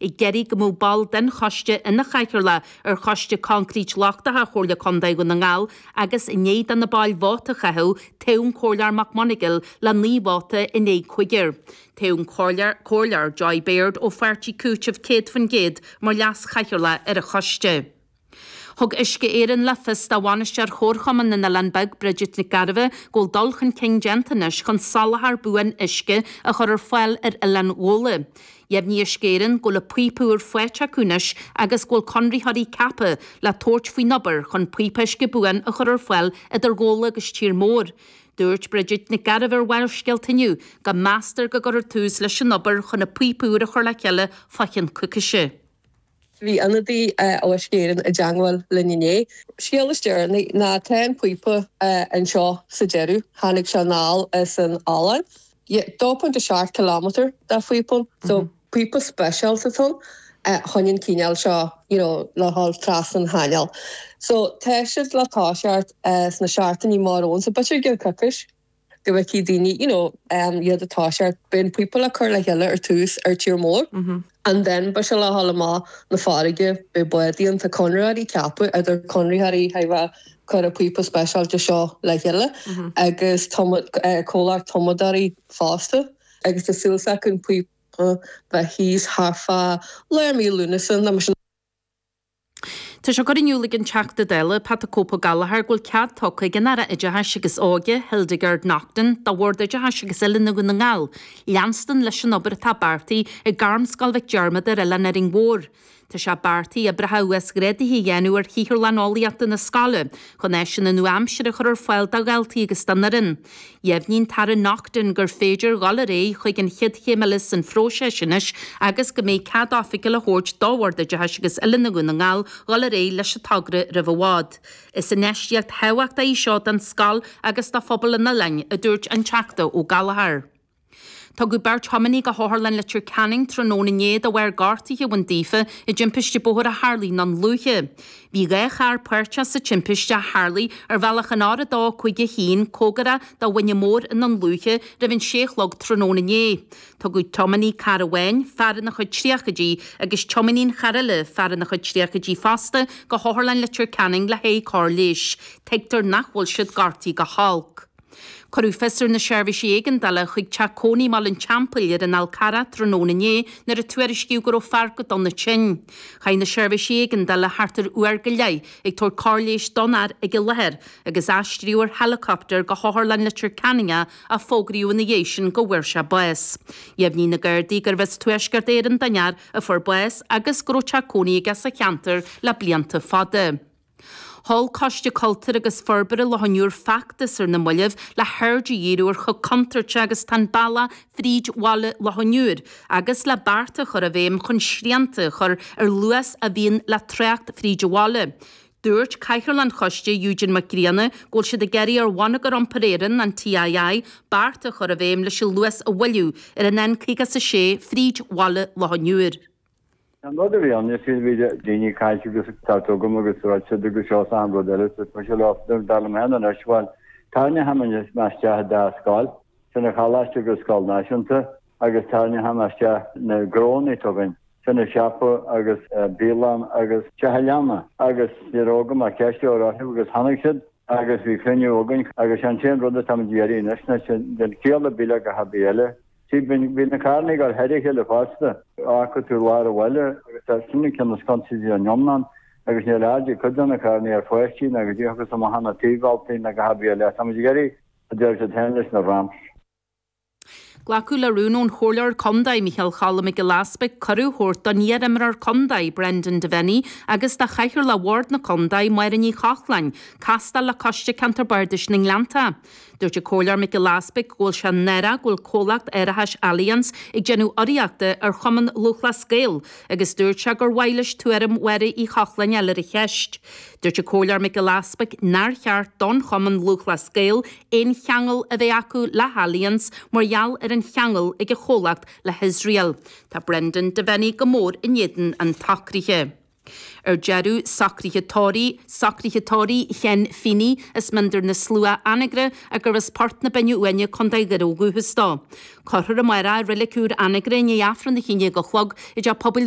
ag iarraidh go mbeadh ball den choiste ina chathaoirleach ar Choiste Concrete Lochtacha Chomhairle Contae Dhún na nGall agus i ndiaidh do na baill vóta a chaitheamh, toghadh an Comhairleoir McMonagle le naoi vóta in aghaidh cúigir. Toghadh an Comhairleoir Joy Beard ó Pháirtí Cúitimh 100% mar leas-chathaoirleach ar an choiste. Thug Uisce Éireann le fios do Bhainisteoir Chomharchumann na nOileán Beag, Bridget Nic Gairbheith, go bhfuil dul chun cinn déanta anois chun soláthar buan uisce a chur ar fáil ar Oileán Ghabhla. Dheimhnigh Uisce Éireann go bhfuil an píopa úr faighte acu anois agus go bhfuil conraitheoirí ceaptha le tabhairt faoin obair chun píopa uisce buan a chur ar fáil idir Ghabhla agus tír mór. Dúirt Bridget Nic Gairbheith ar Bharrscéalta inniu go meastar go gcuirfear tús leis an obair chun an píopa úr a chur le chéile fá chionn coicíse. Bhí ionadaí ó Uisce Éireann i dteangmháil linn inné. Scéal is deireanaí ná tá an píopa anseo sa deireadh. Tháinig sé anall as an Ollainn. 2.7 kilometre de phíopa. So, píopa speisialta atá ann chun an cíneál seo, you know, le dhul trasna an chainéil. So, tá siad le toiseacht sna seachtainí amach romhainn. So, beidh sé ag déanamh coicís. go bhfeicfidh daoine, you know, um, iad ag toiseacht. Beidh an píopa le cur le chéile ar tús ar tír mór. And then, beidh sé le dhul amach na farraige, beidh bádaí ann. Tá conraitheoirí ceaptha, idir conraitheoirí ó thaobh a, cur an píopa speisialta seo le chéile, agus tumadh, eh, comhlacht tumadóirí fosta. Agus tá súil s'acu an píopa bheith thíos thart fá lár mhí Lúnasa, nó mar sin. Tá sé curtha in iúl ag an Teachta Dála Pat 'The Cope' Ó Gallchóir go bhfuil cead tugtha ag an Aire Oideachais agus Óige, Hildegarde Naughton, do Bhord Oideachais agus Oiliúna Dhún na nGall leanstan leis an obair atá beartaithe ag Gairmscoil Mhic Diarmada ar Oileán Árainn Mhór. Tá sé beartaithe oibreacha uasghrádaithe a dhéanamh ar shaotharlann eolaíochta na scoile chun áiseanna nua-aimseartha a chur ar fáil do dhaltaí agus don fhoireann. Dheimhnigh an tAire Naughten gur féidir dhul ar aghaidh chuig an chéad chéim eile san phróiseas anois agus go mbeidh cead oifigiúil á thabhairt do Bhord Oideachais agus Oiliúna Dhún na nGall dhul ar aghaidh leis an togra roimh i bhfad. Is infheistíocht thábhachtach í seo don scoil agus do phobal an oileáin, a dúirt an Teachta Ó Gallchóir. Tugadh beirt thiománaí go hOtharlann Leitir Ceanainn tráthnóna inné de bharr gortuithe a bhain daofa i dtimpiste bóthair a tharlaigh i nDún Lúiche. Bhí dhá charr páirteach sa timpiste a tharlaigh ar bhealach an R251, comhgarach do Mhuine Mór i nDún Lúiche roimh an 6 a chlog tráthnóna inné. Tugadh tiománaí cairr amháin, fear ina chuid tríochaidí, agus tiománaí an chairr eile, fear ina chuid tríochaidí fosta, go hOtharlann Leitir Ceanainn le haghaidh cóir leighis. Tuigtear nach bhfuil siad gortaithe go holc. Cuireadh fios ar na seirbhísí éigeandála chuig teach cónaí i mBaile an Teampaill ar an Fhál Carrach tráthnóna inné nuair a tuairiscíodh go raibh fear go dona tinn. Chaith na seirbhísí éigeandála thart ar uair go leith ag tabhairt cóir leighis don fhear ag an láthair agus aistríodh ar héileacaptar go hOtharlann Leitir Ceanainn é, ach fógraíodh ina dhiaidh sin go bhfuair sé bás. Dheimhnigh na Gardaí gurbh as Tuaisceart Éireann don fhear a fuair bás agus go raibh teach cónaí aige sa cheantar le blianta fada. Sheol Coiste Cultúir agus Forbartha Loch an Iúir feachtas ar na mallaibh le haird a dhíriú ar chomh contúirte agus atá an bealach fríd bhaile Loch an Iúir agus le bearta a chur i bhféidhm chun srianta a chur ar luas a bhíonn le trácht fríd an bhaile. Dúirt Cathaoirleach an Choiste, Eugene Mac Grianna, go bhfuil siad ag iarraidh ar Bhonneagar Iompair Éireann, an TII, bearta a chur i bhféidhm leis an luas a mhoilliú ar an N56 fríd bhaile Loch an Iúir. An rud a bhí ann, is ea, bhí daoine ag caint agus ag tabhairt chugam agus dúirt siad agus seo is an-rud eile agus tá sé lá, dar liom féin anois, bhuel, tharraing mé isteach an dá scoil, sin an choláiste agus an scoil náisiúnta agus tharraing mé isteach na gnónnaí againn, sin an siopa agus bialann agus teach an leanna agus ní raibh agam ach ceist a chur orthu agus tháinig siad agus bhí cruinniú againn agus sé an t-aon rud atá muid ag iarraidh anois, ná sin, den chiall ar bith le gach ar bith eile. Sea, bhí na carrannaí gar thoir a chéile fosta. Fhaca tú lár an bhaile agus tá cinneadh cén sconsa idir an iomlán agus níl aird ag cuid de na carrannaí ar pháistí agus ag teacht amach as na taobh-bhealtaí ná a dhath ar bith eile. Táimid ag iarraidh, a deir siad féin, leis na ramps. Glacadh le rún ón Chomhairleoir Contae, Micheál Cholm Mac Giolla Easbuig, cuireadh a thabhairt don iar-imreoir contae, Brendan Devenney, agus do chathaoirleach Bhord na Contae, Máire Ní Chochláin, castáil le Coiste Ceantair Bardais na nGleanntach. Dúirt an Comhairleoir Mac Giolla Easbuig go bhfuil sé náireach go bhfuil comhlacht árachais Allianz ag déanamh urraíochta ar Chumann Lúthchleas Gael agus dúirt sé gur mhaith leis tuairim Mháire Ní Chochláin a fháil ar an cheist. Dúirt an Comhairleoir Mac Giolla Easbuig nár cheart don Chumann Lúthchleas Gael aon cheangal a bheith acu le hAllianz mar gheall ar an cheangal ag an chomhlacht le hIosrael. Tá Brendan Devenney go mór in éadan an tsocraithe. Ar deireadh, socruithe tórraimh, socruithe tórraimh Shane Feeney, as Mín Doire na Slua, Anagaire agus as Port na Binne Uaine, Contae Dhoire ó dhúchas dó. Cuirfear amárach i reilig úr Anagaire i ndiaidh Aifreann a haon déag a chlog i dTeach Pobail